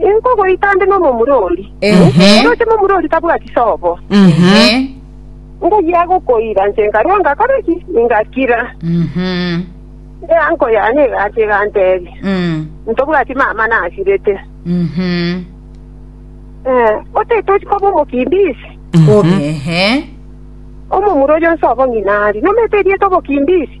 Inkogoita nde nomomura oria. Ehe. Roche momura oria tabwati sobo. Ehe. Ngoyia gokoira nche nkarua ngakora ki? Ngakira. Mhm. Eanko yane egacha egantebia. Mm. Ntobwati mama nasirete. Mhm. Eh, otetochi koba omokimbisi. Obe. Ehe. Omomura oyo nsobo ng'ina ari. Nomete erieta obokimbisi.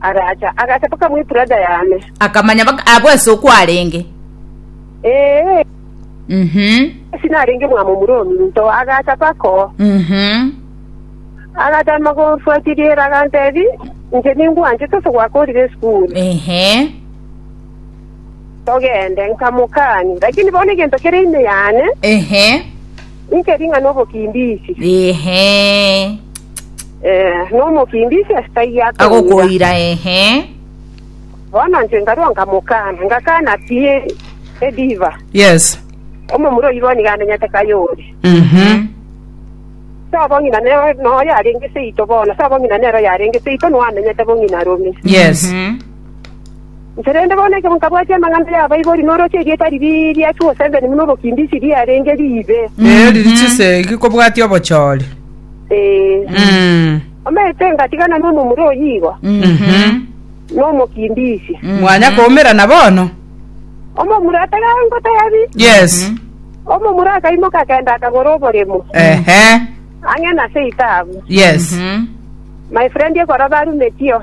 aracha, agacha mpaka mwa ebrada yane. Akamanya baka abwo ase okwarenge. Ee, Mhm. ase narenge omwami omoromi into, agacha mpaka oo. Mhm. Agatama gomfuatia riera, agantebi, inche ningwanchete ase gwakorire esukuru, Ehe. togende. Nkamokani, lakini bono egento kere ime yane, Ehe. Inche ring'ana obokimbiichi, Ehe. eh, nomokimbiichi ase taiyo akoira. Agokoira ehe. Bono inche nkarua nkamokana, ngakana pi ediva. Yes. Omomura oyio bono nigo amenyete kayore. Mhm. Ase obong'ina ne- noyo arenge seito bono, ase obong'ina nero yarenge seito, nigo amenyete bong'ina rome. Yes. Mhm. Korende bono ekero nkabwatia amang'ana y'abaibori na oroche erieta riria ria Suosenzeni buna obokimbichi riarenge riibe, Ee, riri chisegi kobwatia obochori. ee, Mm. omanyete ngatigana nomomura oyigo, Mhm. nomokimbichi. Mwanya koumerana bono? Omomura atagangotari, Yes. omomura akaimoka akenda akagora oboremo, Ehe. ang'e nase itabu. Yes. My friend ekora barumetio.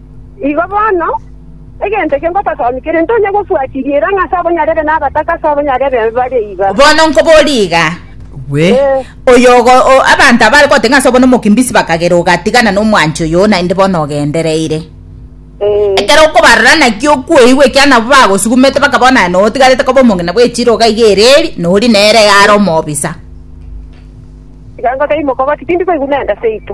Igo bono, egento ekio ngototomia kere ntonye gofuatiria eira ng'a ase abonyarebe na abataka ase abonyarebe bare iga. Bono nkobori iga, Gwe, Eh. oyo ogo, o- abanto abare gote ng'a ase obo nomokimbisi bakagera ogatigana nomwanchi oyo naende bono ogendereire. Eh, Ekero okobarora naki okweigwa ekiagera nabwo bagosugumete bakabao naye notigarete koba omong'ina bw'echiro iga iga ereri, nori nere iga are omobisa. tiga ngotebi mokogoti, tindi koigwa nende seito.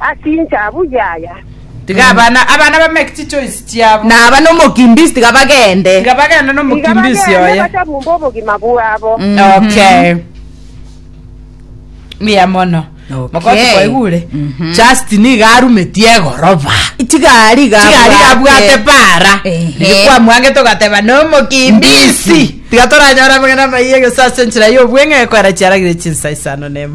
Ase inchabu yaya. Tiga abana, abana bamake chichoice chiabo. Na abana omokimbisi tiga bagende. Tiga bagende nomokimbisi oye. Tiga bagende bachabumbe obogima bwabo. Okay. Mbuya mono. Mokoti kwaigure. Just niga arumetie egoroba. Tiga ari ga. Tiga ari ga bwate para. Nikwa mwange togateba no mokimbisi. Tiga toranyora mwana maiye gesase nchira yo bwenge kwera chiaragire chinsa isano nemo.